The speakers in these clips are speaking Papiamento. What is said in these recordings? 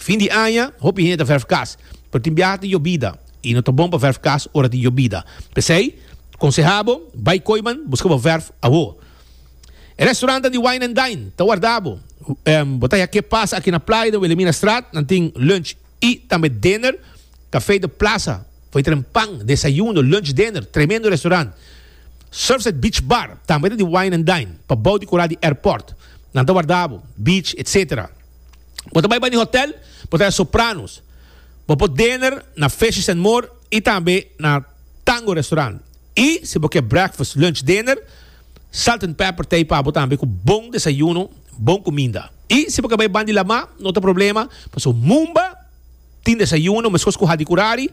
Fin di aña, hopi hende ta vèrf kas, pero tin biaha tin yobida i no ta bon pa vèrf kas ora tin yobida. P'esei, konsehá bo, bai koi man, buska bo vèrf awo. E restorannan di Wine and Dine ta warda bo. Bo ta ya'ke pasa aki na Playa den Wilhelminastraat, nan tin lunch i tambe dinner. Café de Plaza, for e tren pan, desayuno, lunch, dinner, tremendo restaurant. Surfside Beach Bar tambe ta di Wine and Dine, pabou di koral di airport. Nan ta warda bo, beach, etc. Bo ta bai bani hotel, bo ta e Sopranos. Bo por dener na Fishes and More y tambe na Tango Restaurant. Y si bo ke breakfast, lunch, dener, Salt and Pepper ta ey pa bo tambe cu bon desayuno, bon cuminda. Y si bo ke bai bandi Lamá, no ta problema, paso Mumba tin desayuno mescos cu Hadi Curari,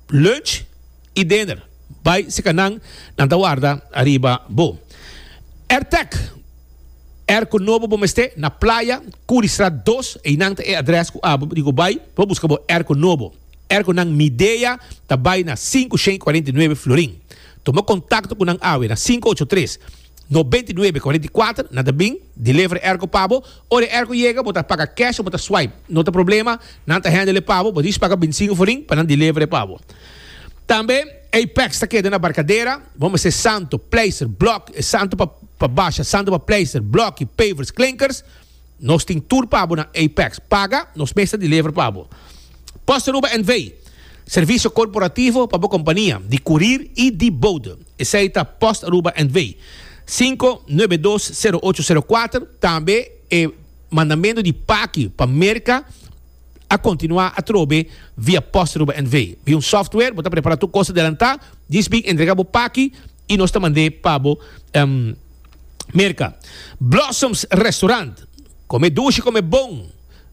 lunch y dener. Bai si ca nan, nan ta warda ariba bo. Airtec. Er ku no bo bo mester na Playa, Curriestraat dos, einan ta e adres ku abo di ku bai pa buska bo er ku no bo. Er ku nan Midea ta bai na sinku shen kuarenta i nuebe Florin. Tuma kontakto ku nan awe na sinku ocho tres, nobenta i nuebe kuarenta i kuater, nan ta bin deliver e er ku pa bo. Ora e er ku yega bo ta paga cash o bo ta swipe, no ta problema, nan ta handle e pa bo, bo dies paga bintisingu Florin pa nan deliver e pa bo. Tambe. Apex ta keda na Barcadera, bo mester santo, pleister, blok, e santo pa pa basha, santo pa pleister, bloki, pavers, klinkers, nos tin tur pa bo na Apex, paga, nos mes ta deliver pa bo. Post Aruba NV. Servicio corporativo pa bo compania di curir y di bode. Esey ta Post Aruba NV. Cinco nuebe dos cero ocho cero cuater, tambe e mandamento di paki pa Merca a continua atrobe via post Aruba NV. Via un software bo ta prepara tur cos adelanta, djis bin entrega bo paki y nos ta mande pa bo Merca. Blossoms Restaurant, come dushi come bon,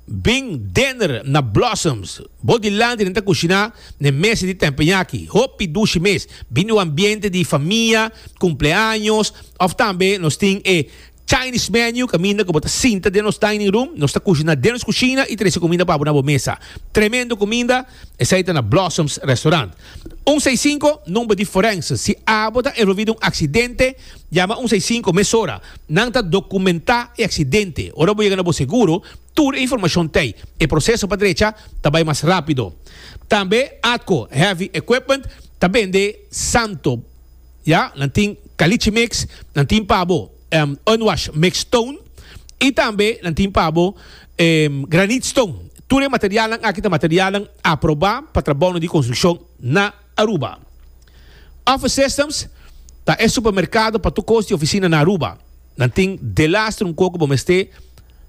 bin dinner na Blossoms, bo dilanti nan ta cushina n'e mes di tempenyaki, hopi dushi mes, bin n'e un ambiente di famia, cumpleaños of tambe nos tin e. Chinese menu, caminda cu bo ta sinta den nos dining room, nos ta cushina den nos cushina y trece cuminda pa bo na bo mesa. Tremendo cuminda, esai ta na Blossoms Restaurant. Un sai cinco, number di forense. Si abo ta envolvi den un accidente, yama un sai cinco mesora. Nan ta documenta e accidente. Ora bo yega na bo seguro, tur e informacion t'ey. E proceso pa drecha ta bay mas rapido. Tambe Atco Heavy Equipment ta bende santo. Ya, nan tin Caliche Mix, nan tin pa bo e Unwash Mix Stone y tambe nan tin pa bo e Granite Stone. Tur e materialnan aki ta materialnan aproba pa trabounan di construccion na Aruba. Office Systems ta e supermercado pa tur cos di oficina na Aruba. Nan tin delas trunco cu bo mester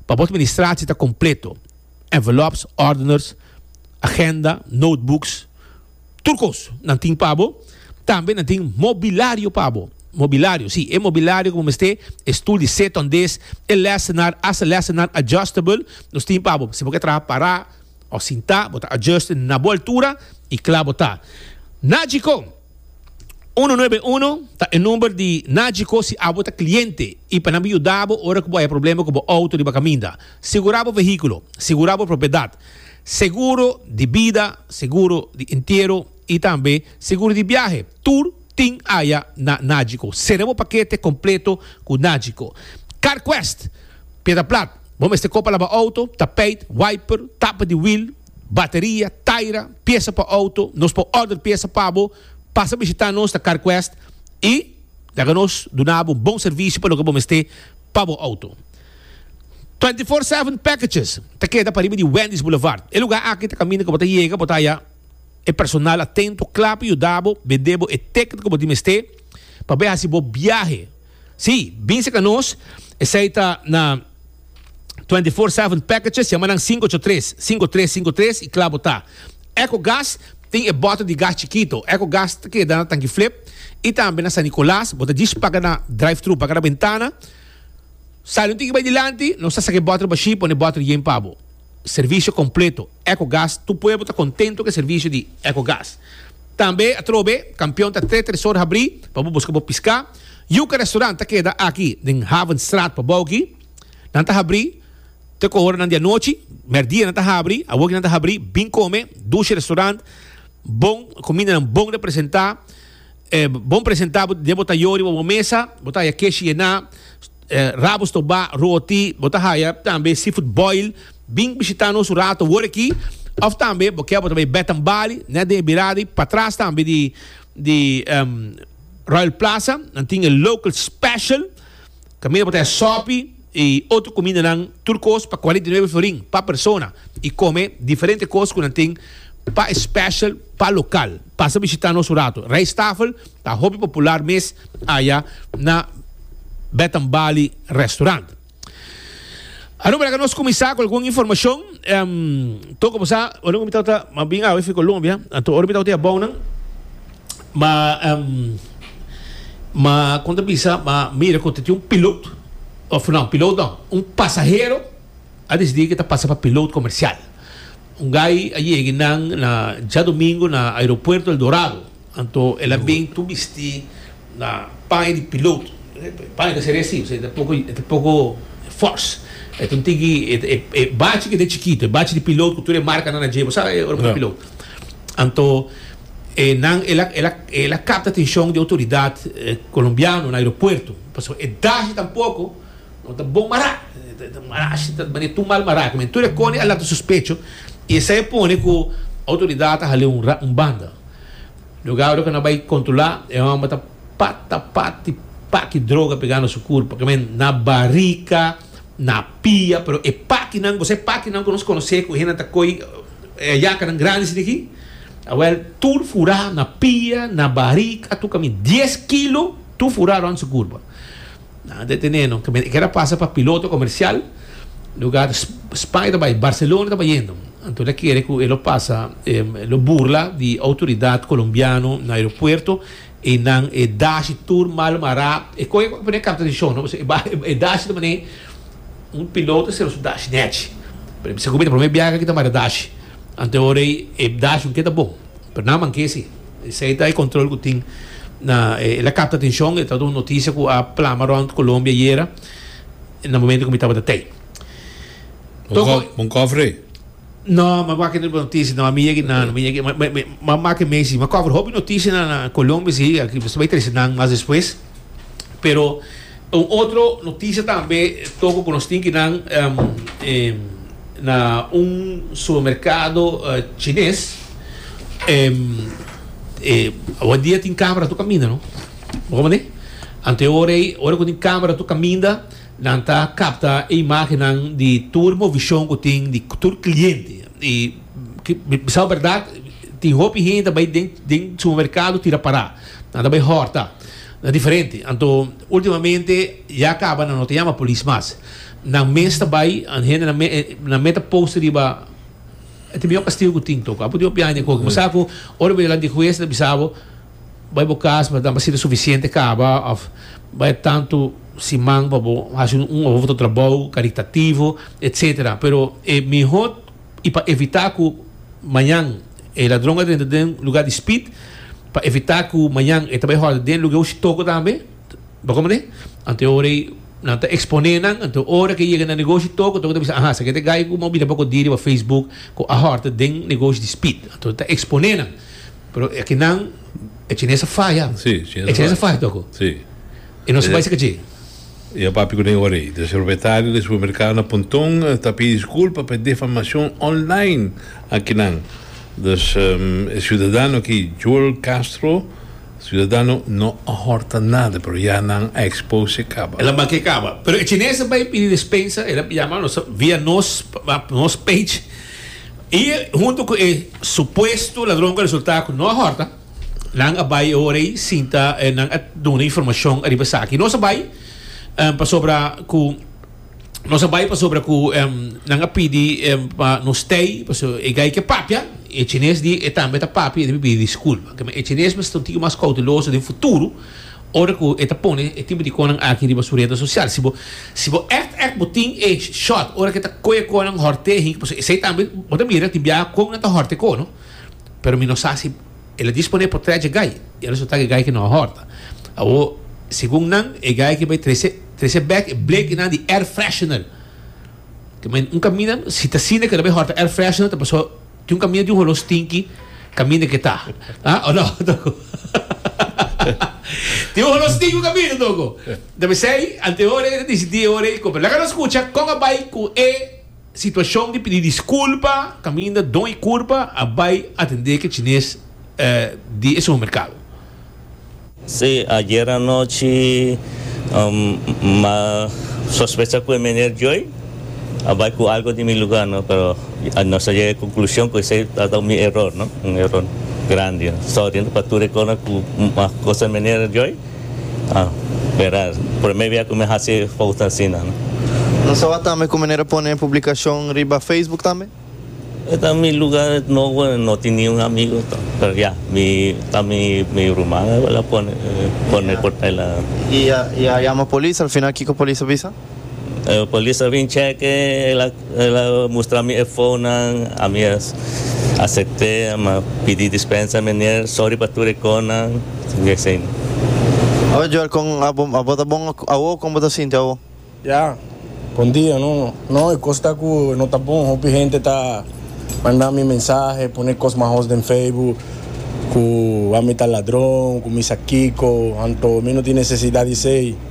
pa bo administratie ta completo, envelopes, ordeners, agenda, notebooks. Tur kos. Nan tin pa bo. Tambe nan tin mobilario pa bo. Mobilario, sí, e mobilario ku bo mester, e stul di seta un des, e lèsenar, hasta lèsenar adjustable, nos tin pa bo. Si bo ke traha pará òf sintá, bo ta adjust na bo altura i kla bo ta. Nagico, uno nuebe uno ta e number di Nagico si abo ta kliente i pa nan por yuda bo ora ku bo haya problema ku bo outo riba kaminda. Sigurá bo vehíkulo. Sigurá bo propiedat. Seguro di bida, seguro di entiero y tambe seguro di biahe tur tin aya na Nagico. Sera bo pakete completo cu Nagico. CarQuest, Piedra Plat, Bo mester kopa laba auto, tapijt, wiper, tapa di wiel, bateria, taira, piesa pa auto. Nos por order piesa pa bo. Pasa bishita nos na CarQuest y laga nos duna bo un bon servicio pa loke bo mester pa bo auto. Twenty Four Seven Packages ta keda pariba di Wendy's Boulevard. E lugá aki ta kaminda ku bo ta yega, bo ta haña e personal atento kla pa yuda bo bend'é bo e teket ku bo tin mester pa bai hasi bo biahe. Sí, bin serka nos, esei ta na Twenty Four Seven Packages, yama nan sinku ocho tres, sinku tres sinku tres i kla bo ta. Echo Gas tin e bòter di gas chikito. Echo Gas ta keda na Tanki Flip i tambe na San Nicolas. Bo ta djis paga na drive-thru, paga na bentana. Saliu tin ki bai dilanti, nos ta saka e bòter bashí, pone bòter yen pa bo. Servisio kompleto, Ecogas, tur pueblo ta kontento ku e servisio di Ecogas. Tambe atrobe, Kampion ta tres tresor habrí pa bo buska bo piská. Yuka Restaurant ta keda aki den Havenstraat pa bou aki. Nan ta habrí te ku horanan di anochi, mèrdia nan ta habri, awoki nan ta habri, bin kome, Dushi Restaurant, bon, kumindanan bon representá. E bon presenta bo den bo ta yo riba bo mesa, bo ta haya keshi yená, rabu stobá, roti, bo ta haya tambe seafood boil. Bin bishita nos un rato awor aki, of tambe bo ke bo ta bai Bath and Bali, net den e birada ei, patras tambe di Royal Plaza, nan tin e local special. Camina pa ta e sopi y otro cumindanan, tur cos pa cuarenta y nuebe florin pa persona y come diferente cos cu nan tin pa e special pa local. Pasa bishita nos un rato. Rijsttafel ta hopi popular mes aya na Bed and Bali restaurant. Arum para cu nos cuminsa cu algun informacion, em, toca bosa, arum mi tawata, ma bin awe fico lombi, a, anto ora mi tawata e abounan, Ma em ma kon ta bisa ma mira ku ta tin un pilot of no pilot no un pasahero a desidi ke ta pasa pa pilot komersial un gai a yegi nan na djadumingu na aeropuerto El Dorado anto el a bin tur bisti na paña di pilot paña ta seria si e ta poko e ta poko fors e ta un tiki e bachi ke ta chikitu e bachi di pilot ku tur e markanan a djeba sa e ora bo ta pilot anto. e nan el a el a el a capta atencion di autoridad colombiano na aeropuerto pasobra e dashi tampoco no ta bon mara ta ta mara ashi ta manera tur mal mara kimin tur e cone a lanta sospecho y esey a pone cu autoridad a hale un ra un banda luego awe cu nan a bay controla e homber ta pata pati paki droga pega na su curpa kimin na barica na pia pero e pakinan gosae pakinan cu nos conoce cu e hende nan ta coy e yacanan grandi si di aki. Awel, tur furá na pia, na barik, a tuka mi dies kilo, tur furá rònt su kurba. Nan a detené no. E keda pasa pa piloto komersial, lugá Spanje ta bai, Barselona ta bai yendo. Anto el a kere ku e lo pasa, e lo burla di outoridat kolombiano na aeropuerto, i nan e dashi tur mal mará. E kohe pa pone karta di shon no, pasobra e bai, e dashi ta manera un piloto ta sera su dashi nèchi. Segun mi ta promé biaha aki ta mara dashi. Ante ora ei e bdash lo keda bon, pero nan manke si. Esei ta e control cu tin na e. El a capta atencion, e tabata un noticia cu a plama rond Colombia ayera, na momento cu mi tabata tei. Toko. Bon cofre? No, m'a wak e noticia, no, mi yegi nan, mi yegi, m'a make mei si. M'a cofre hopi noticia na Colombia si, aki mester bai trece nan mas despues. Pero un otro noticia tambe toko cu nos tin ki nan na un supermercado Chines awa dia tin camera tur caminda no bo mane anteor ey ora cu tin camera tur caminda nan ta capta e imagennan di tur movision cu tin di tur cliente y bisao berdad tin hopi hende ta bay den den supermercado tira para. Nan ta bay horta na diferente. Anto ultimamente ya caba nan no ta yama polis mas. Nan mes ta bay and hende nan me nan meta post riba e ta miyor castigo cu tin toco. Apu tin hopi aña cu hopi. Masa cu ora bo yalanta di hues e ta bisa bo bay bo cas mada nan sirbi suficiente caba of bay tanto siman pa bo haci un otro trabou caritativo etcetera pero e mihot y pa evita cu mañan e ladron a renta den lugar di speed, pa evita cu mañan e ta bay horde den lugar hoshi toco tambe, bo con mane? Anto e ora ey nan ta expone nan, anto e ora cu e yega na negoshi toco, toco ta bisa aha, esaki ta e gay cu mi a bira boco di riba facebook cu a horde den negoshi di speed, anto ta expone nan, pero aki nan e chinese a faya, e chinese a faya toco, e no sa bay si cachi. E a papia cu den ora ey. Dor propietario den supermercado na Pontón ta pidi disculpa pa e defamacion online akinan. Dus e ciudadano aki, Joel Castro, ciudadano no a horta nada pero ya nan a expose e caba. Ela make e caba. Pero e chinees a bay pidi despensa, ela yama nos via nos nos page y hunto cu e supuesto ladronnan resulta cu no a horta. Nan a bai e ora ei sinta eh, nan a duna informashon ariba esaki. Nos a bai em, pasobra ku nos a bai pasobra ku em, nan a pidi em, pa nos tei paso e gai ke papia e chines di e tambe ta papia e debe pidi diskulpa. Ke men e chines mester ta un tiki mas kouteloso den futuro ora ku e ta pone e tipo di konan aki riba su rede sosial. Si bo si bo èkt èkt bo tin e shot ora ke ta koe konan hòrtehi paso esei tambe bo ta mira tin biaha kon nan ta hòrte ko no. Pero mi no sa si el a disponé pa trece e gai. E a resultá ku e gai aki no a hòrta. Awor, segun nan, e gai aki bai trece trece bèk e blek inan di air freshener. Te mañana un kaminda, si ta asina ku e ta bai hòrta air freshener ta pasó tin un kaminda di un holó stinki kaminda ku e ta. Ah o no, Toko? Tin un holó stinki un kaminda, Toko. Ta p'esei anteora e ta disidí e ora ei ku, laga nos skucha kon a bai ku e. Situacion di pidi disculpa caminda don y curpa a bay atende ke chines di e supermercado. Sí, ayer anochi m'a sospecha cu e meneer Joy a bay cu algo di mi lugar no, pero nos a yega e conclusion cu esey a taba mi error no, un error grandi no. Sorry no pa tur e cona cu m'a cosa e meneer Joy. Ah, bera, prome bia cu mi haci e fout asina, no? No tawat tambe cu manera pone e publicacion riba Facebook tambe? E ta mi lugar nobo, no tin niun amigo to, pero ya, mi, ta mi, mi ruman awe la pone, pone por ta el a. Y a, y a yama polis al final kico polis a bisa? E polis a bin cheke, el a mustra mi e founnan, ami a asepte, ami a pidi dispensa, menier, sorry pa tur e konan, tin di asina. Oye Joel, kon abo ta bon awo? Kon bo ta sinti awo? Ya, bon dia, no, no, e kos ta ku no ta bon, hopi hente ta manda mi mensahe, pone kos mahos den Facebook, ku ami ta ladron, ku mi sa kiko, anto mi no tin nesesidat di esei.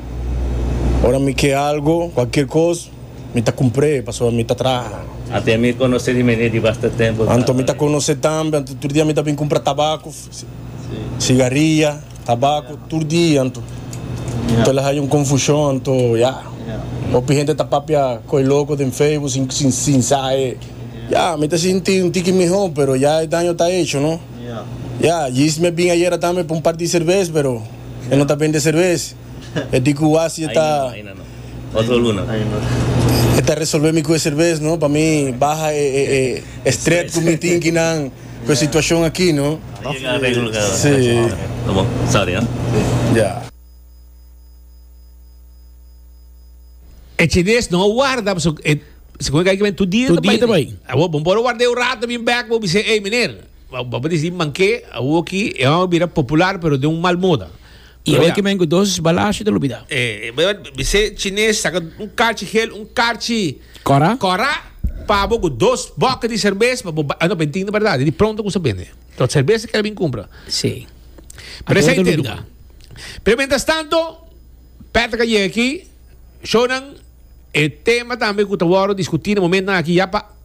Ora mi ke algo, kualkier kos, mi ta kumpr'é pasobra mi ta traha. Anto mi konos'é di menier di basta tempu. Anto mi ta konos'é tambe. Anto tur dia mi ta bin kumpra tabako, sigaria, tabako, tur dia. Anto el a haña un konfushon. Anto, ya, hopi hende ta papia ku e loko den Facebook sin sin sa e. Ya, mi ta sinti un tiki mihó, pero ya e daño ta hecho, no? Ya, Yismi a bin ayera tambe pa un par di serbes, pero. E no ta bende serves. E di ku wasi e ta. Aina no, aina no. Otro luna. Aina no. E ta resolbe mi ku e serves no. Pa mi baha e stret ku mi tin kinan ku e situashon aki no. Ta yega areglo ka. Si. Ta bon. Sorry ha. Ya. E chines no a warda pasobra e. Sikomoi ka yega tur dia ta bai. Tur dia ta bai. Awor bo por a warda e un rato a bin bek bo a bisa ey meneer. Bo a dici, Manke awor ki e hòmber bira popular, pero den un mal moda. I hoy ki men cu dos balashi ta lo bida. Bisé Chines saca un carchi gel, un carchi. Cora. Cora, pa bo cu dos boca di cerveza pa bo bai. No, ben tin berdad, di pronto cu sa bende. Lo cerveza kel a bin cumpra. Sí. Pero esai tin nan. Pero mientras tanto, Patrick a yega aki, shownan, e tema tambe cu ta worde discuti na momentonan aki ya pa.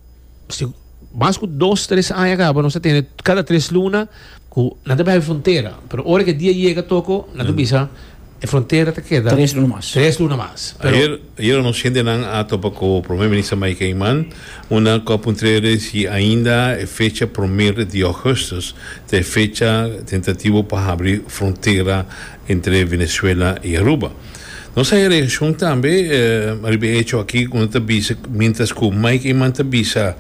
si mas ku dos tres aña kaba nos ta tene kada tres luna ku nan ta bihai frontera pero ora ku e dia yega toko nan ta bisa e frontera ta keda Tres luna mas. tres luna mas pero Ayer, ayer nos gentenan a topa cu Primer Minister Mike Eman, unda cu a puntreri si ainda e fecha primer di augustus ta e fecha tentativo pa habri frontera entre Venezuela y Aruba. Nos a haña reaccion tambe riba e hecho aki cu nan ta bisa mientras cu Mike Eman ta bisa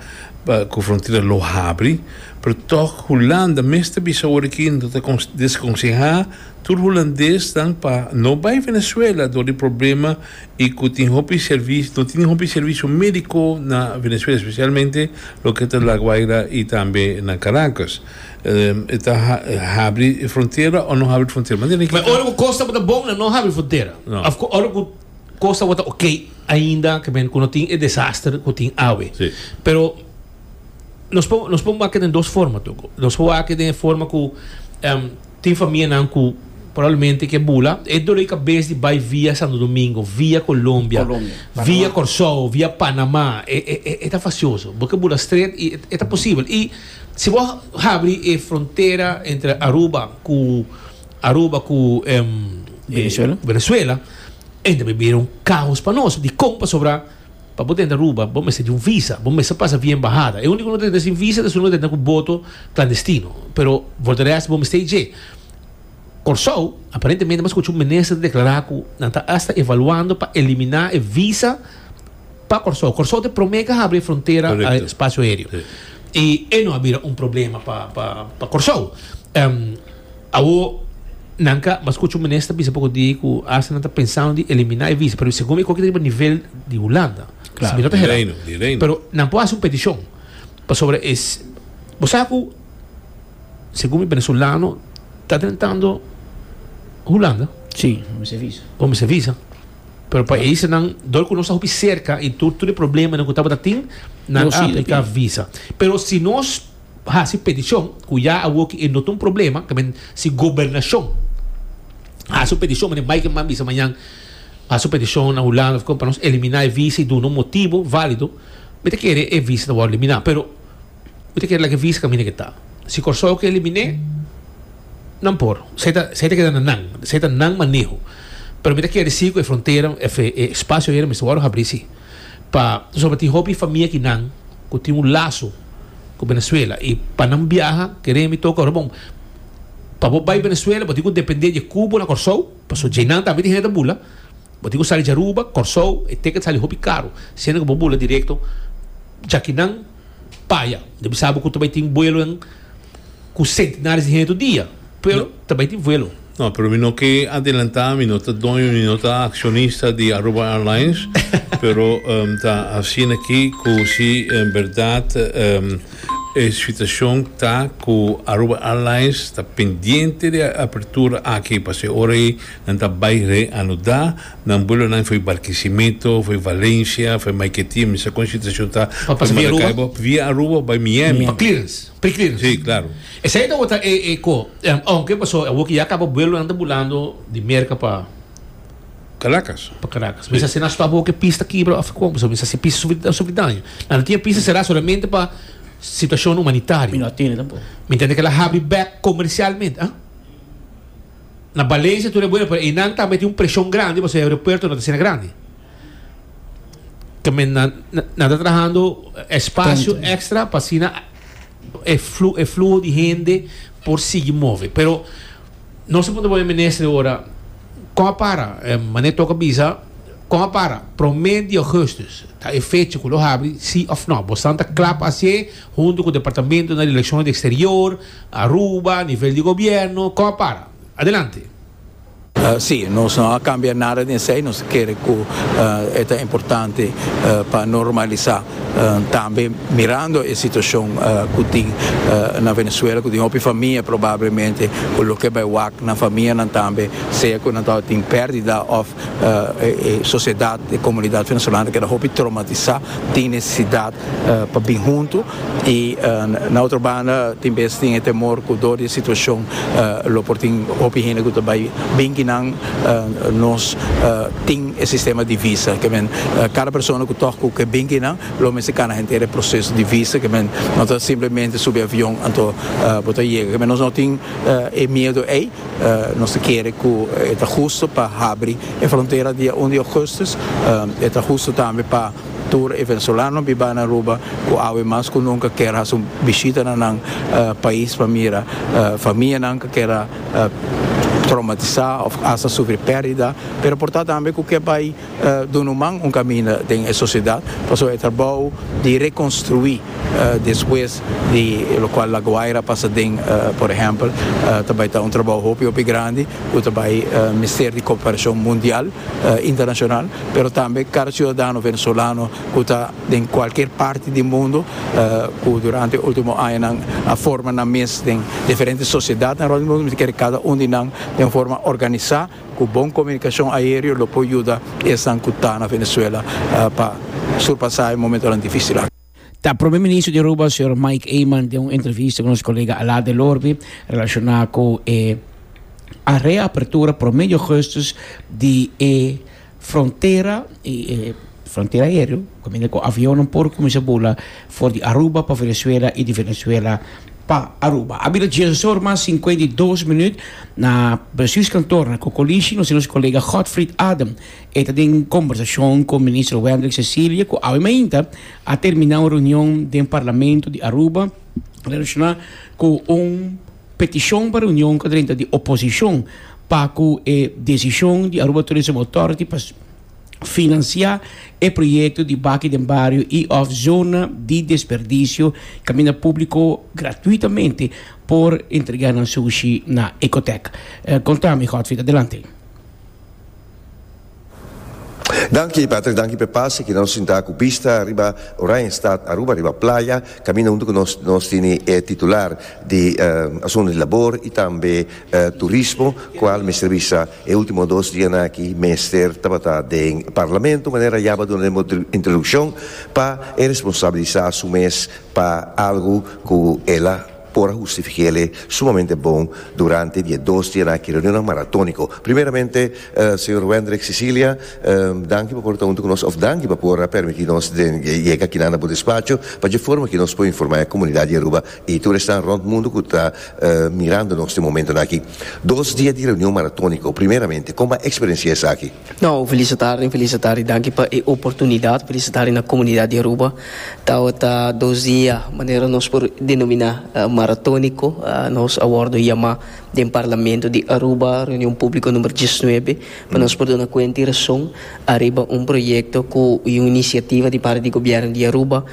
cu frontera lo habri pero tog Hulanda mes ta bisa ora aki nan ta desconseha tur Hulandesnan pa no bay Venezuela dor di problema y cu tin hopi servicio no tin hopi servicio medico na Venezuela especialmente loke ta La Guaira y tambe na Caracas. E ta habri e frontera o no habri e frontera? Manera ki. Ora ku kos tabata bon nan no habri frontera. Ora ku kos tabata ok ainda ke men ku no tin e desaster ku tin awe. Pero nos por nos por wak den dos forma tok. Nos por wak den e forma ku tin famianan ku probablemente ke bula e dole kabes di bai via Santo Domingo, via Colombia, via Kòrsou, via Panama e ta fasioso. Bo ke bula strèt i e ta posibel i. Si bo habri e frontera entre Aruba cu Aruba cu Venezuela e ta bira un caos pa nos dicon pasobra pa bo ta entra Aruba bo mester di un visa bo mester pasa via embahada e unico no ta entra sin visa ta su no ta entra cu boto clandestino pero for the rest bo mester e dje Corsou aparentemente mi a scucha un minister declara cu nan ta asta evaluando pa elimina e visa. Pa Kòrsou. Kòrsou ta e promé ku a habri e frontera spasio aereo. I e no a bira un problema pa pa Kòrsou. Awor nan ka, mas skucha un minister bisa poko di ku asta nan ta pensando di eliminá e visa, pero segun mi koki ta riba nivel di Hulanda. Claro, di Reino, di Reino. Pero nan por hasi un petishon pasobra e bo sa ku segun mi venezolano ta tentando Hulanda. Si, bo mester visa. Bo mester visa. Pero pa esenan dor ku nos ta hopi serka i tur tur e problemanan ku tabata tin, nan a apliká visa. Pero si nos hasi petishon, ku ya awoki e no ta un problema, ta men si gobernashon hasi un petishon manera Mike Mann bisa mañan, hasi un petishon na Hulanda òf kon pa nos eliminá e visa i duna un motibu válido, mi ta kere e visa ta wòrdu eliminá. Pero. Bo ta kere laga visa kaminda ke ta. Si Kòrsou ke eliminé, nan por. Esei ta, esei ta keda na nan. Esei ta nan maneho. Pero mi ta kere si ku e frontera, e e spasio ayera mester wòrdu habrí, sí. Pa, pasobra tin hopi famia kinan ku tin un laso ku Venezuela i pa nan biaha keren mi toka ora, bon, pa bo bai Venezuela bo tin ku dependé dje ku bo na Kòrsou, paso djeinan tambe tin hende ta bula. Bo tin ku sali dje Aruba, Kòrsou, e teket sali hopi karu siendo ku bo bula direkto djakinan. Paya, no bisa bo cu ta bay tin vuelo en cu centenares di hende tur dia, pero ta bay tin vuelo. No, pero mi no ke adelanta, mi no ta doño ni no ta accionista di Aruba Airlines, pero em ta hacina aki cu si en berdad em e situacion ta cu Aruba Airlines ta pendiente di e apertura aki, pa si ora ey nan ta bay reanuda. Nan bulonan foi Barquisimeto, foi Valencia, foi Maiquetía, mi sa con situacion ta, foi Maracaibo, via Aruba o bai Miami. Pa clearance, pre clearance. Sí, claro. Esey ta wota e e co, aunque paso awo ki ya caba buelonan ta bulando di Merca pa, Caracas. pa Caracas, mi sa si nan stop awo cu e pis ta kibra of con, paso mi sa si e pis ta sufri daño. Nan ta tin e pis ta cera solamente pa situacion Mi humanitario. no a tene tampoco. Mi ntende cu el a habri bek comercialmente, ah? Na Balencia tur e bueno pero einan tambe tin un presion grandi pasobra e aeropuerto no ta asina grandi. Tambe nan nan ta trahando espacio Tanto. extra pa asina e flu e fluho di hende por sigui move. Pero nos a puntra boe minister ora kon a para? E mane toca bisa kon a para? Prome di augustus ta e fecha cu lo habri si of no. Bosnan ta cla pa haci'e? Huntu cu Departamento na Relaciones di Exterior, Aruba, a nivel di Gobierno, con a para. Adelante. Si, nos no a cambia nada den esey, nos ta kere cu e ta importante pa normalisa tambe mirando e situacion cu tin na Venezuela, cu tin hopi famia probablemente cu loke a bay wak na famianan tambe, sea cu nan tabata tin perdida of E sociedad, e comunidad venezolano keda hopi traumatisa, tin necesidad pa bin hunto y na otro banda tin bes tin e temor cu door di e situacion lo por tin hopi hende cu ta bay bin ki nan nos tin e sistema di visa ke men cada persona cu tok cu ke bin ki nan lo mester cana henter e proceso di visa ke men no ta simplemente subi avion anto bo ta yega ke men nos no tin e miedo ey. Nos ta kere ku e ta hustu pa habri e frontera dia un di ougustus. E ta hustu tambe pa tur e venezolanonan biba na Aruba ku awe mas ku nunka kier hasi un bishita na nan pais pa mira famianan ku keda traumatisá òf hasta sufri pèrdida, pero por ta tambe ku ke bai Duna un man un kaminda den e sosiedat pasobra e trabou di rekonstruí despues di lokual La Guaira pasa den, por ehèmpel, ta bai ta un trabou hopi hopi grandi ku ta bai mester di koperashon mundial, internashonal, pero tambe kada siudadano venezolano ku ta den kualkier parti di mundu ku durante e último añanan a forma nan mes den diferente sosiedatnan rònt di mundu mi ta kere kada un di nan den un forma organisá. Ku bon komunikashon aereo lo por yuda esnan ku ta na Venezuela pa surpasá e momentonan difísil aki. Ta Prome Minister di Aruba, señor Mike Eman, den un entrevista ku nos kolega Alaa del Orbe relashoná ku e areapertura prome di Augustus di e Frontera y e frontera aereo caminda cu avionnan por cuminsá bula for di Aruba pa Venezuela y di Venezuela pa Aruba. A bira dies oor mas cincuenta y dos minuut na Brasil's kantoor na Kokolishi nos tin nos colega Godfried Adam. E ta den combersacion cu Minister Wendrick Cecilia cu awe mainta a termina un reunion den Parlamento di Aruba relaciona cu un Petishon pa reunion ku drenta di oposishon pa ku e desishon di Aruba Tourism Authority pa finansiá e proyekto di Baki den Bario i òf Zona di Desperdisio kaminda públiko gratuitamente por entregá nan sushi na Ecotec. Konta mi Godfrid. Adelante. Danki Patrick, danki p'e pase ki nos sinta ku bista riba Oranjestad Aruba, riba playa, kaminda huntu ku nos, nos tene e titular di Asuntu di Labor i tambe Turismo, kual mester bisa e ultimo dos dianan aki mester tabata den Parlamento, manera ya bo a duna den bo introdukshon, pa e responsabilisa su mes pa algu ku el a. por a hustifikéle sumamente bon durante di e dos dianan aki reunionnan maratóniko. Primeramente, señor Wendrick Sicilia, danki pa por ta huntu ku nos, òf danki pa por a permití nos den yega akinan na bo despacho pa dje forma ku nos por informá e komunidat di Aruba i tur esnan rònt mundu ku ta mirando nos den momentonan aki. Dos dia di reunion maratóniko, primeramente, kon bo a eksperensiá esaki? No, felicitari en felicitari danki pa e oportunidad felicitari na comunidad di Aruba tawata dos dia manera nos por denomina maratonico nos a wordo yama den parlamento di Aruba reunion publico number diesnuebe pa nos por duna cuenta y rason ariba un proyecto cu y un iniciativa di parte di gobierno di Aruba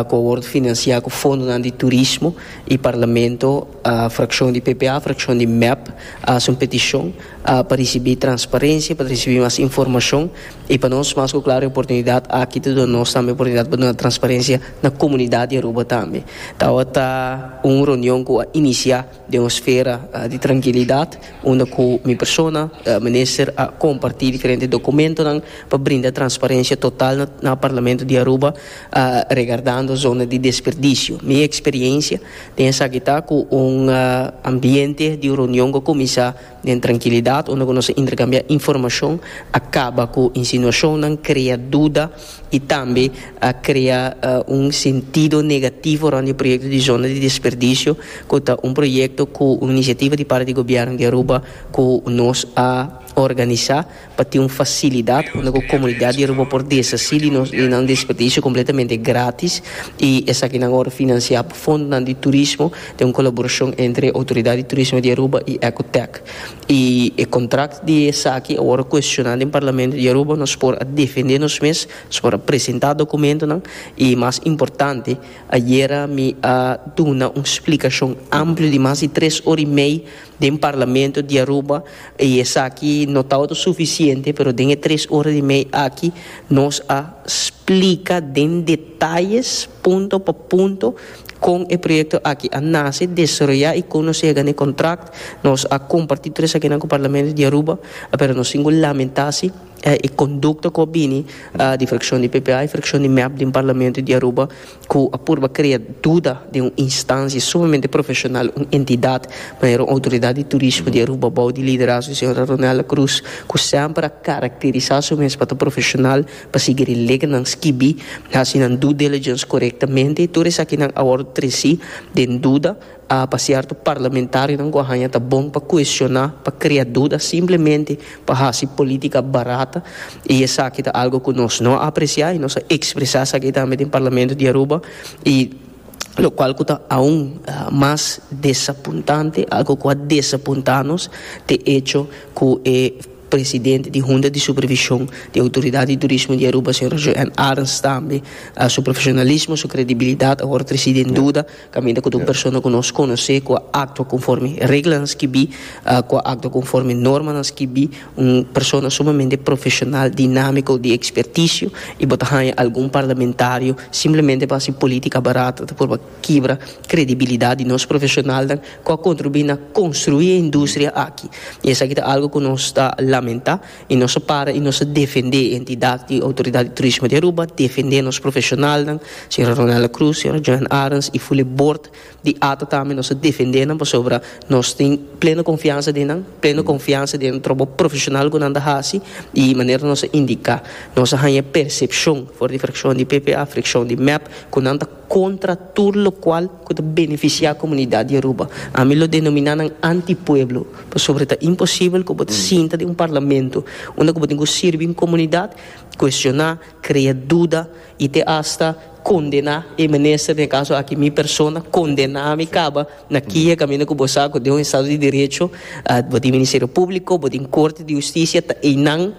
cu a wordo financia cu fondonan di turismo y parlamento Frakshon di PPA, frakshon di mep, a haci un peticion pa ricibi transparencia, pa ricibi mas informacion y pa nos mas cu claro e oportunidad aki ta duna nos tambe oportunidad pa duna transparencia na comunidad di Aruba tambe. Tawata un reunion cu a inicia den un sfera di trankilidad unda cu mi persona, Minister, a comparti diferente documentonan pa brinda transparencia total na Parlamento di Aruba regardando zona di desperdicio. Mi experiencia. Den esaki ta ku un ambiente di reunion ku a kuminsá den trankilidat unda ku nos a interkambiá informashon a kaba ku insinuashonnan, krea duda i tambe a krea un sentido negativo rònt di e proyekto di zona di desperdisio ku ta un proyekto ku un inisiativa di parti di Gobièrnu di Aruba ku nos a organisá. pa tin un facilidad unda cu comunidad di Aruba por deshaci di nos di nan desperdicio completamente gratis y esaki nan awor financia pa fondonan di turismo den un colaboracion entre Autoridad di Turismo di Aruba y Ecotech y e contract di esaki awor a cuestiona den Parlamento di Aruba nos por a defende nos mes nos por a presenta documentonan y mas importante ayera mi a duna un splicacion amplio di mas di tres ora y mei Den Parlamento di Aruba y esaki no tabata suficiente pero den e tres ora y mei aki nos a splica den detalles punto pa punto con e proyecto aki a nace, desaroya y con nos a yega na e contract. Nos a comparti tur esakinan cu Parlamento di Aruba pero nos tin cu lamenta si e conducta cu a bini di fraccion di ppa y fraccion di mep den Parlamento di Aruba. cu a purba crea duda den un instancia sumamente profesional, un entidad, manera un Autoridad di Turismo di Aruba bao di liderazgo di Sra. Ronella Cruz, cu semper a caracterisa su mes pa ta profesional, pa sigui relegnan skibi, haci nan due diligence corectamente. Tur esakinan awor treci den duda, Pa sierto parlamentarionan ku a haña ta bon pa kueshoná, pa krea duda simplemente pa hasi polítika barata i esaki ta algu ku nos no a apresiá i nos a ekspresá esaki tambe den Parlamento di Aruba i lokual ku ta aun mas desapuntante, algu ku a desapuntá nos t'e echo ku e presidente di Hunta di Supervishon di Outoridat di Turismo di Aruba, señor Joël Arends tambe su profeshonalismo, su kredibilidat a wòrdu trasí den duda. Caminda cu tur persona cu nos conoce cu a actua conforme reglanan skibi, cu a actua conforme normanan skibi, un persona sumamente profesional, dinamico, di experticio y bo ta haya algun parlamentario simplemente pa haci politica barata ta por kibra credibilidad di nos profesionalnan cu a contribui na construi e industria aki y esaki ta algo cu nos ta lamenta. I nos a para i nos a defendé e entidat di Outoridat di Turismo di Aruba, defendé nos profeshonalnan, señora Ronella Cruz, señora Joan Arends i fuli bord di ata tambe nos a defendé nan pasobra nos tin pleno konfiansa den nan, pleno konfiansa den e trobou profeshonal ku nan ta hasi i manera nos a indiká. Nos a haña persepshon for di frakshon di PPA, frakshon di mep ku nan ta. contra tur locual cu ta beneficia comunidad di Aruba. Ami lo denomina nan antipueblo, pasobra ta imposible cu bo ta sinta den un parlamento unda cu bo tin cu sirbi un comunidad, cuestiona, crea duda y te hasta condena e minister, den e caso aki mi persona, condena ami caba na kije caminda cu bo sa cu den un estado di derecho bo tin Ministerio Publico, bo tin Corte di Husticia, ta einan.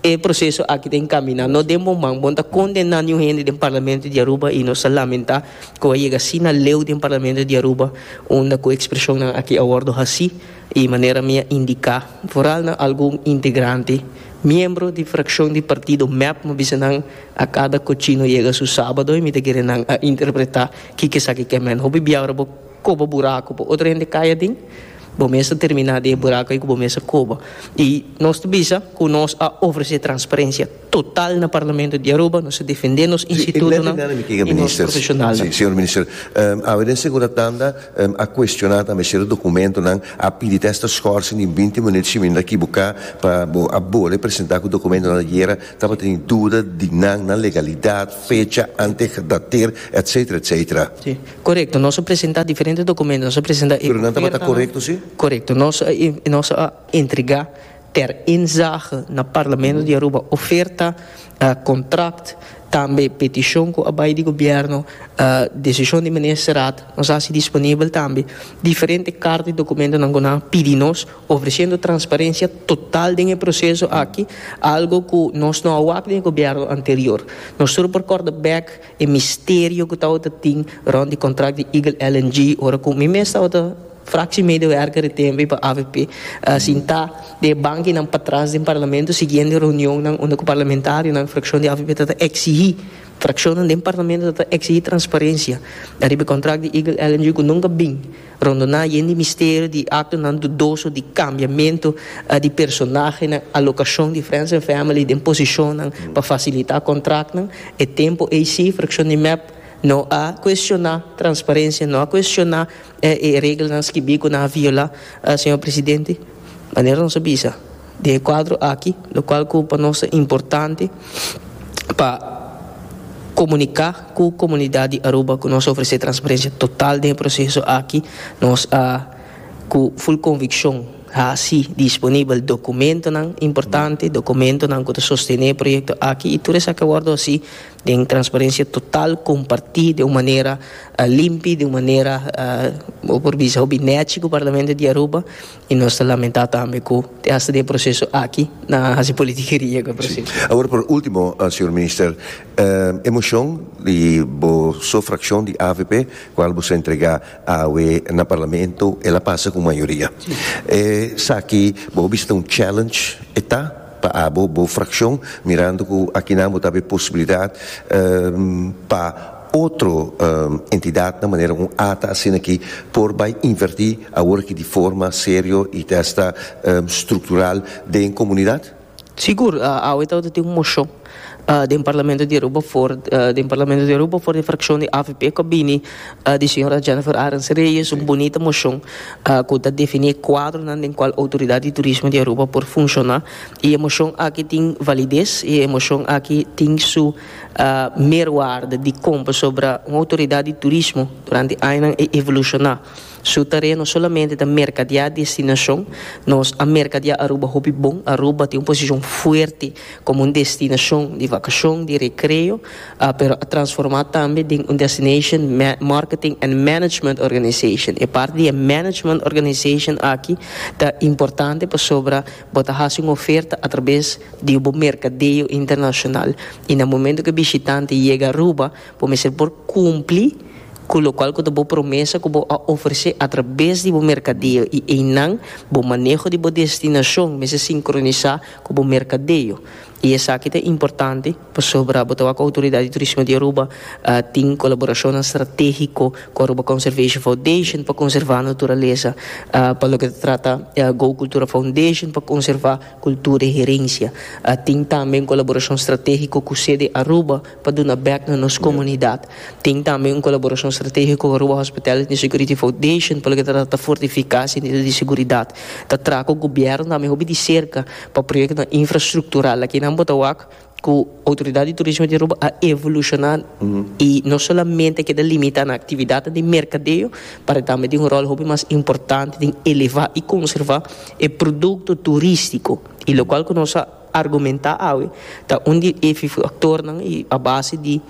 E proseso aki ta encamina, no den bo man. Bon ta condena niun hende den Parlamento di Aruba y nos ta lamenta cu a yega asina leu den Parlamento di Aruba unda cu expresionnan aki a wordo haci y manera mi a indica vooral na algun integrante, miembro di fraccion di partido mep mi bisa nan a cada cochino yega su sabado y mi ta kere nan a interpreta kico esaki ke men. Hopi biaora bo. koba buraku pa otro hende kai aden, bo mes ta terminá den e buraku ei ku bo mes a koba. I nos ta bisa ku nos a ofresé transparencia total na Parlamento di Aruba, nos a defendé nos institutonan i nos profeshonalnan. Señor Minister, awe den Segurataanda a kuestioná tambe sierto dokumentonan, a pidi te asta skòrsing den binti minüt si mi no ta kibuká, pa bo a bole presentá ku dokumentonan ayera tabata tin duda di nan, nan legalidat, fecha, ante gedateerd, etsetera, etsetera. Korekto, nos a presentá diferente dokumentu, nos a presentá e ofertanan. Pero nan tabata korekto, sí? Korekto, nos a nos a entregá ter inzage na Parlamento di Aruba oferta, kontrakt, tambe petishon ku a bai di gobièrnu, desishon di Ministerat, nos a hasi disponibel tambe diferente karta i dokumentunan ku nan a pidi nos, ofresiendo transparensia total den e proseso aki, algo ku nos no a wak den e gobièrnu anterior. Nos tur por kòrda bèk E misterio ku tabata tin rond di kontrakt di Eagle LNG ora ku mi mes tabata fraksi medewerker di tempu pa avp a sintá den e bankinan patras den Parlamento siguiendo e reunionnan unda ku parlamentarionan frakshon di avp tabata eksigí frakshonnan den Parlamento tabata eksigí transparensia ariba e kontrakt di Eagle LNG ku nunka bin Rondoná yen di misterio di aktonan dudoso di kambiamentu di personahenan, alokashon di friends and family den posishonnan pa fasilitá kontraktnan, e tempu ei sí, frakshon di mep, no a kuestioná transparensia, no a kuestioná e reglanan skibí ku nan a violá, señor presidente. Manera nos a bisa. Den e kuadro aki, lokual ku pa nos ta importante pa komuniká ku komunidat di Aruba ku nos a ofresé transparensia total den e proseso aki, nos a ku ful konvikshon hasi disponibel dokumentonan importante, dokumentonan ku ta sostené e proyekto aki i tur esaki a wòrdu hasi den transparensia total, kompartí den un manera limpi, den un manera bo por bisa hopi nèchi ku Parlamento di Aruba. I nos ta lamentá tambe ku te hasta den e proseso aki nan a hasi politikeria ku e proseso. Si. Awor por último, señor Minister, e moshon di bo so frakshon di avp kual boso a entregá awe na Parlamento el a pasa ku mayoria. Si. Esaki bo a bisa ta un challenge e ta pa abo bo frakshon mirando ku aki nan bo ta hab e posibilidat pa. otro entidad na manera un ata asina ki por bai inverti awor aki di forma serio y ta esta structural den comunidad? Sigur, awe tabata tin un mocion den Parlamento di Aruba for den Parlamento di Aruba for di e fraccion di avp cu a bini di señora Jennifer Arends Reyes, un bunita mocion cu ta defini e cuadronan den cual Autoridad di Turismo di Aruba por funciona y e mocion aki tin validez y e mocion aki tin su Merwaarde di kompa sobra un outoridat di turismo durante añanan e evolushoná. Su tarea no solamente ta merkadiá destinashon, nos a merkadiá Aruba hopi bon. Aruba tin un posishon fuerte komo un destinashon di vakashon, di rekreo, pero a transformá tambe den un destination marketing and management organisashon. E parti di e management organisashon aki ta importante pasobra Bo ta hasi un oferta atrabes di bo merkadeo internashonal i na momentu ku e bishitante yega Aruba bo mester por kumpli ku lokual ku ta bo promesa ku bo a ofresé atrabes di bo merkadeo i einan bo maneho di bo destinashon mester sinkronisá ku bo merkadeo. I esaki ta importante pasobra bo ta wak ku Outoridat di Turismo di Aruba tin kolaborashonnan stratégiko ku Aruba Conservation Foundation pa konservá naturalesa, pa loke ta trata Go Cultura Foundation pa konservá kultura i herensia. Tin tambe un kolaborashon stratégiko ku Sede Aruba. Pa duna bek na nos komunidat. Tin tambe un kolaborashon stratégiko ku Aruba Hospitality Security Foundation pa loke ta trata ta fortifiká sentido di seguridat. Ta traha ku gobièrnu tambe hopi di serka pa proyektonan infrastruktural. Aki nan bo ta wak ku Outoridat di Turismo di Aruba a evolushoná i no solamente a keda limitá na aktividatnan di merkadeo pero e tambe tin un ròl hopi mas importante den elevá i konservá e produkto turístiko i lokual ku nos a argumentá awe ta un di e faktornan i a base di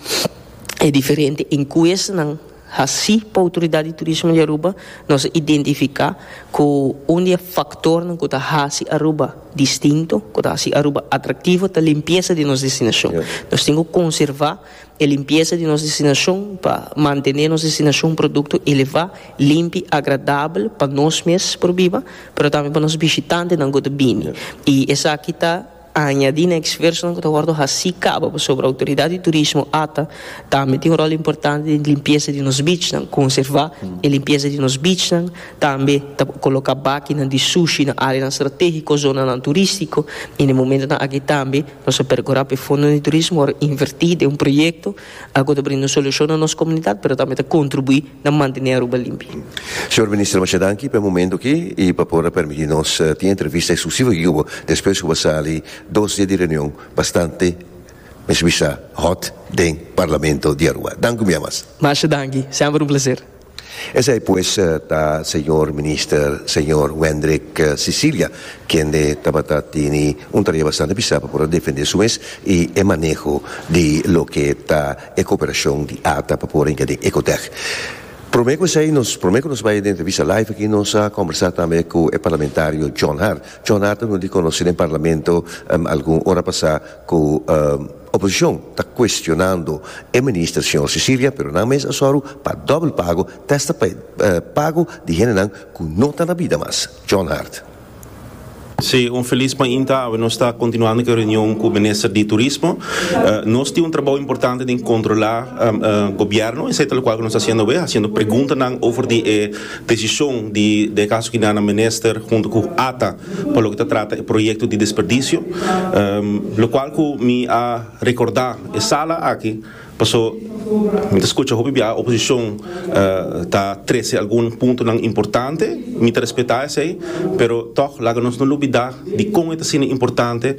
e diferente enkuestanan hasí pa Outoridat di Turismo di Aruba, nos a identifiká ku un di e faktornan ku ta hasi Aruba distinto, ku ta hasi Aruba atraktivo ta limpiesa di nos destinashon. Nos tin ku konservá. E limpiesa di nos destinashon pa mantené nos destinashon produkto elevá, limpi, agradabel pa nos mes por biba, pero tambe pa nos bishitantenan ku ta bini. I esaki ta añadí na eksfersonan ku ta wòrdu hasí kaba, pasobra Outoridat di Turismo, ata, tambe tin un ròl importante den limpiesa di nos bichnan. Konservá e limpiesa di nos bichnan, tambe ta koloká bakinan di sushi na áreanan stratégiko, zonanan turístiko i na e momentonan akí tambe. Nos a percura pa e Fondo di Turismo por inverti den un proyecto a cu ta brinda un solucion na nos comunidad pero tambe ta contribui na mantene Aruba limpi. Señor Minister, masha danki pa e momento aki y pa por a permiti nos tin e entrevista exclusivo aki cu bo despues cu bo a sali dos dia di reunion bastante mes bisa hot den Parlamento di Aruba. Dank u miamas. Masha danki. Semper un placer. Esei pues ta Señor Minister, Señor Wendrick Sicilia, kende tabata tini un tarea bastante pisá pa por a defende su mes i e maneho di loke ta e koperashon di ata pa por a hinka den Ecotech. Promé ku esei, nos promé ku nos bai den entrevista live aki, nos a kombersá tambe ku e parlamentario John Hart. John Hart a wini konosí den Parlamento algun ora pasá ku. Oposicion ta cuestionando e minister señor Sicilia pero nan mes a sòru pa dobel pago testa pa e pago di hendenan cu no ta na bida mas. John Hart. Sí, un feliz mainta awe nos ta continuando cu e reunion cu minister di turismo. Nos tin un trabou importante den controla Gobierno, esei ta locual cu nos ta haciendo awe, haciendo preguntanan over di e Desishon di Dekaso Kinana Minister huntu ku ata pa loke ta trata e proyekto di desperdisio, lokual ku mi a rekordá e sala aki paso mi ta skucha hopi biaha oposishon ta trese algun puntonan importante, mi ta respetá esei, pero tòg laga nos no lubidá di kon e ta asina importante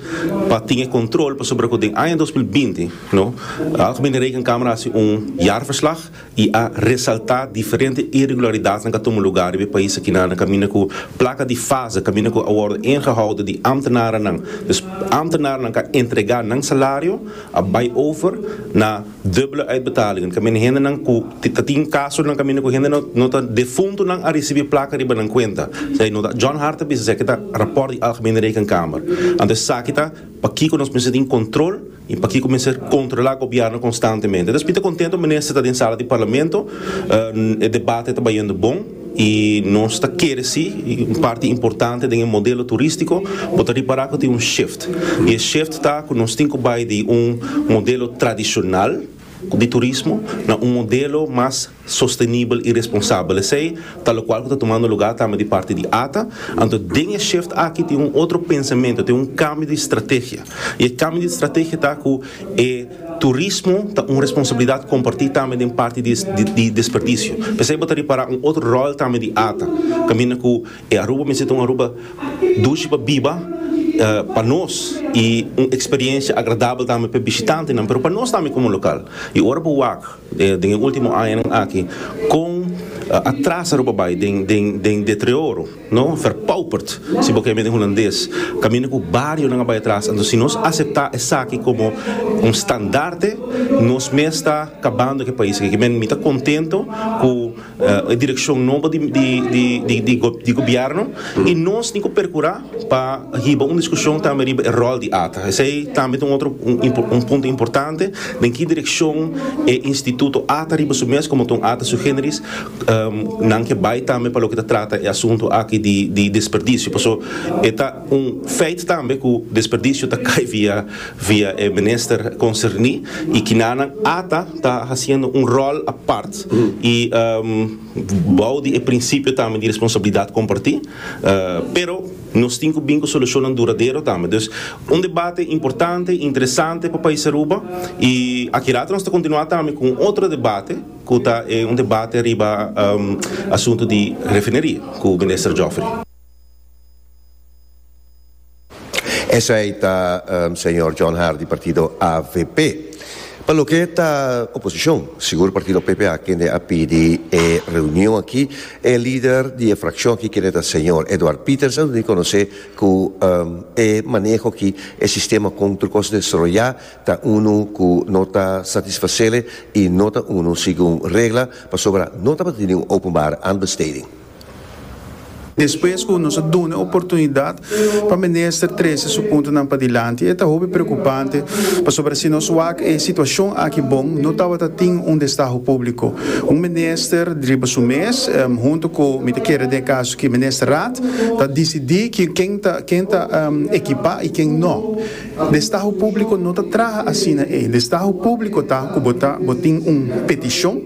pa tin e kontrol pasobra ku den aña dos mil binti, no, Algemene Rekenkamer a hasi un jaarverslag, y a resalta diferente irregularidadnan ka tuma lugar riba e pais akinan kaminda ku plaka di fase kaminda ku a wordo ingehoudo di ambtenarennan. Dus ambtenarennan ka entrega nan salario, a bai over na dubbele uitbetalingen kaminda hendenan ku ta tin kasonan kaminda ku hende no ta defuntonan a risibi plaka riba nan kuenta. Esei no ta John Hart ta bisa esaki ta raport di Algemene Rekenkamer. Anto esaki ta pakiko nos mester tin kontrol. I pakiko mester kontrolá gobièrnu konstantemente? Entonces mi ta kontento minister ta den sala di parlamento, e debate ta bayendo bon i nos ta kere si un parti importante den e modelo turístiko bo ta ripará ku tin un shift i e shift ta ku nos tin ku bai di un modelo tradishonal di turismo na un modelo mas sostenibel i responsabel. Esei ta lokual ku ta tumando lugá tambe di parti di ata. Anto den e shift aki tin un otro pensamentu, tin un kambio di strategia. I e kambio di strategia ta ku e turismo ta un responsabilidat kompartí tambe den parti di di desperdisio. P'esei bo ta ripará un otro ròl tambe di ata kaminda ku e Aruba mester ta un Aruba dushi pa biba pa nos i un eksperiensia agradabel tambe p'e bishitantenan pero pa nos tambe komo lokal. I ora bo wak. Den e ultimo añanan aki con atrasa lo bo bay den deterioro, no? Verpauperd, si bo ke mende Hulandes, caminda cu barionan a bay atras. Anto si nos acepta esaki como un standaarde, nos mes ta cabando cu e pais aki. Kimen mi ta contento cu. e direkshon nobo di gobièrnu i nos tin ku perkurá pa hiba un diskushon tambe riba e ròl di ata. Esei tambe ta un otro un punto importante, den ki direkshon e instituto ata riba su mes komo ta un ata sui generis nan ke bai tambe pa loke ta trata e asuntu aki di desperdisio pasobra e ta un feit tambe ku desperdisio ta kai via via e minister concerni y kina nan ata ta haciendo un rol apart y bou di e principio tambe di responsabilidad comparti pero nos tin cu bin cu solucionnan duradero tambe dus un debate importante interesante pa pais Aruba y aki rato nos ta continua tambe cu un otro debate cu ta e un debate riba asunto di refineria cu minister Geoffrey. Esey ta Señor John Hardy partido avp. Pa loke ta oposicion, sigur partido PP a kende a pidi e reunion aki, e lider di e fraccion aki kende ta Señor Edward Pieters a duna conoce cu e maneho aki, e sistema con tur cos desroya ta unu cu no ta satisfacele y no ta unu segun regla, pasobra no tabata di ningun openbare aanbesteding. Despues cu nos a dun'e oportunidad pa minister trece su puntonan padilanti e ta hopi preocupante pasobra si nos wak e situacion aki bon no tabata tin un destaho publico, un minister riba su mes hunto cu mi ta kere den e caso aki Ministerraad ta dicidi ken ta ekipa y ken no. Destaho públiko no ta traha asina ei. Destaho públiko ta ku bo ta bo tin un petishon,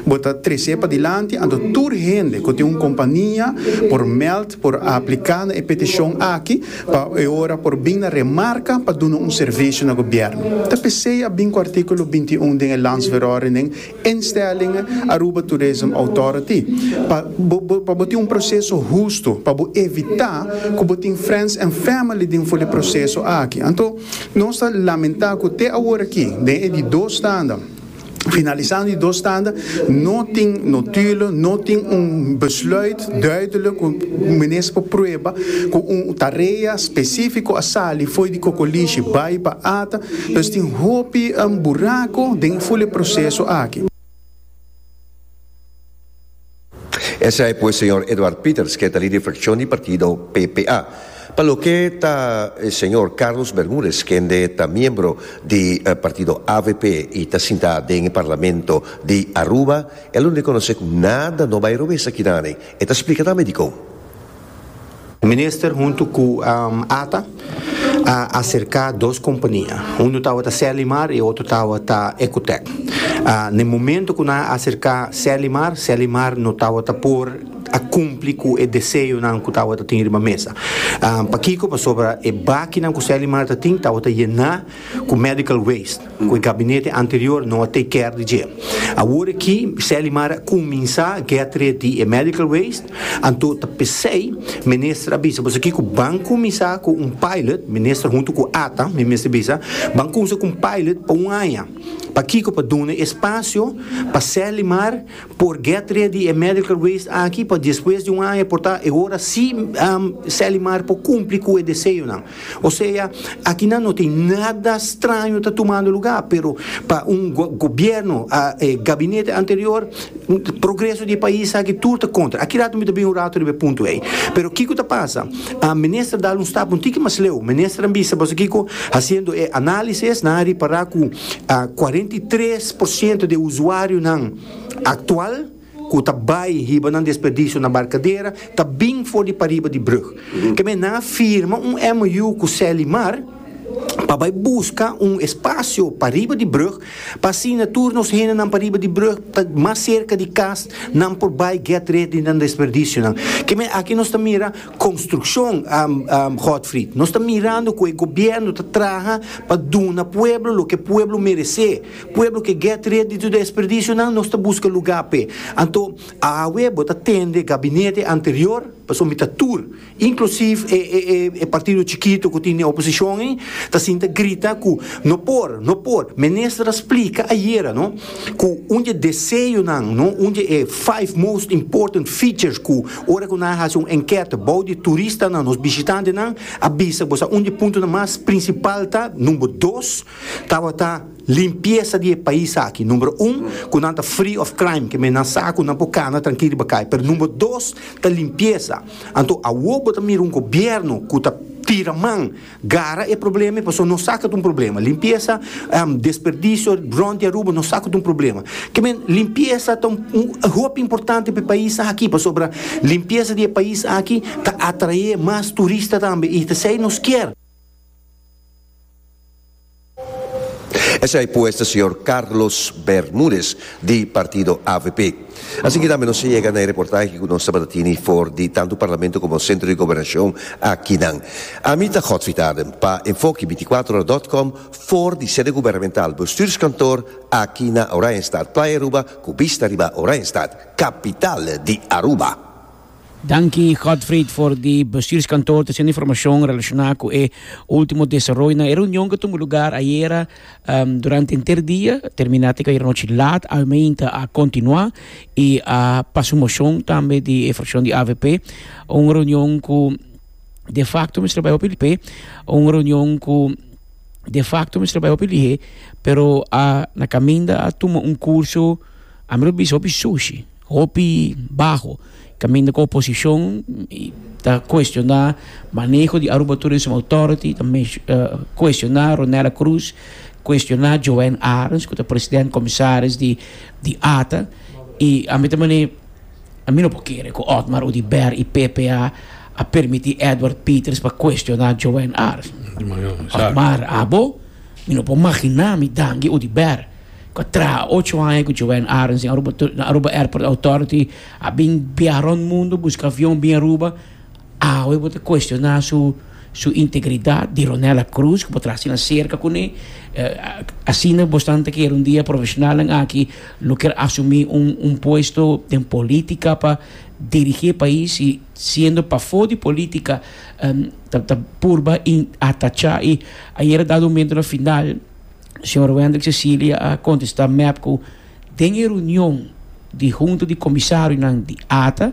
bo ta tres'é padilanti anto tur hende ku tin un kompania por mèld por a apliká na e petishon aki pa e ora por bin na remarka pa duna un servisio na gobièrnu. Ta p'esei a bin ku artíkulo bintiún den e Landsverordening, instelling Aruba Tourism Authority pa pa bo tin un proceso husto pa bo evita cu bo tin friends and family den for di proceso aki anto nos ta lamenta cu te awor aki den e di dos tanda finalisando di dos tanda no tin notulo no tin un besluit. Duidelijk cu menes pa prueba cu un tarea specifico a sali fo'i di cocolishi bay pa ata, dus tin hopi buraco den e fule proceso aki. Esei pues señor Edward Pieters ke ta lider fraccion di partido PPA. Pa loke ta e señor Carlos Bermudez kende ta miembro di partido avp y ta sinta den e parlamento di Aruba, E lo reconoce cu nada no bay robes akinan ey. E ta splica tambe dicon. Minister hunto cu ata a acerca dos compania. Uno tawata Selimar y otro tawata Ecotec. Na e momento cu nan a acerca Selimar, Selimar no tawata por a cumpli cu e deseonan cu tawata tin riba mesa. Pakico? Pasobra e bakinan cu Selimar ta tin tawata yena. cu medical waste cu e gabinete anterior no a take care di dje. Awor aki Sally Mar a cuminsa get ret di e medical waste, anto ta pesey Minister a bisa boso kico ban cuminsa cu un pilot, Minister hunto cu ata, mi mester bisa, ban cuminsa cu un pilot pa un aña. Pakico? Pa duna espacio pa Sally Mar por get ret di e medical waste aki pa despues di un aña por ta e ora si Sally Mar por cumpli cu e deseonan. O sea, akinan no tin nada straño ta tumando lugá, pero pa un go-gobierno, a, e gabinete anterior, progreso di e pais aki tur ta kontra. Aki rato mi ta bini un rato riba e punto ei. Pero kiko ta pasa? A minister dal un stap un tiki mas leu. Minister a bisa, Pasobra kiko? Hasiendo e análisis nan a ripará ku a kuarenta i tres por siento di e usuarionan aktual, ku ta bai hiba nan desperdisio na Barkadera ta bin for di pariba di brug. Kemey nan a firma un MOU ku Selimar pa bai buska un espasio pariba di brug pa asina tur nos hendenan pariba di brug ta mas serka di kas nan por bai get red di nan desperdisionan. Kemey aki nos ta mira konstrukshon, Godfried. Nos ta mirando ku e gobièrnu ta traha pa duna pueblo loke pueblo meresé. Pueblo ke get red di tur desperdisionan nos ta buska lugá p'e. Anto awe bo ta tende gabinete anterior pa somita tur, inklusiv e e partido chikitu ku tin den oposishon ei, ta sinta grita ku no por, no por. Minister a splika ayera no ku un di e deseonan no, un di e five most important features ku ora ku nan a hasi un enkèt bou di turistanan, nos bishitantenan, a bisa ku bo sa un di e puntonan mas prinsipal ta, number dos, Tabata limpiesa di e pais aki numero un ku nan ta free of crime kende nan sa ku nan por kana trankil riba kai pero numero dos ta limpiesa anto awo bo ta mira un gobièrnu ku ta tira man gara e problema i pasobra no sa ku ta un problema limpiesa desperdisio rònt di Aruba no sa ku ta un problema kende limpiesa ta hopi importante pa e pais aki pasobra limpiesa di e pais aki ta atrae mas turista tambe i ta esei nos kier. Esei pues ta señor Carlos Bermudez di partido avp. Así ki tambe nos a yega na e reportahe ku nos tabata tini for di tantu Parlamento komo Sentro di Gobernacion akinan. Ami ta Godfrey Taden pa Enfoke binticuatro ora dot com for di sede gubernamental bestuurskantoor aki na Oranjestad, Playa Aruba ku bista riba Oranjestad, kapital di Aruba. Danki Godfried for di bestuurskantoor treciendo informacion relaciona cu e ultimo desaroyo na e reunion cu tumbo lugar ayera durante enter dia, termina tika ayera nochi laat, almeinta a continua y a pasa un mocion tambe di e fraccion di avp, un reunion cu de facto mester bay hopi lihé, un reunion cu de facto mester bay hopi lihé pero a na caminda a tuma un curso a mi lo bisa hopi sushi. Hopi baho, caminda cu oposicion ta cuestiona maneho di Aruba Tourism Authority, ta cuestiona Ronella Cruz, cuestiona Joanne Arens cu ta president comisaris di di ata y ami ta mane ami no por kere cu Otmar Oduber y PPA a permiti Edward Peters pa cuestiona Joanne Arens. Otmar abo mi no por magina mi danki Oduber. Cu a traha ocho aña cu Joanne Arends den Aruba Airport Authority, a bin biaha rond mundo, busca avion bin Aruba. Awe bo ta cuestiona su su integridad. Dironella Cruz cu bo traha asina cerca cu ne. Asina bosnan ta kere un dia profesionalnan aki lo ker asumi un un puesto den politica pa dirigi e pais y siendo pafo di politica ta ta purba in atacha y ayer a dado un mento na final. Señor Wendrick Cecilia a contesta mep cu den e reunion di hunta di comisario nan di ata,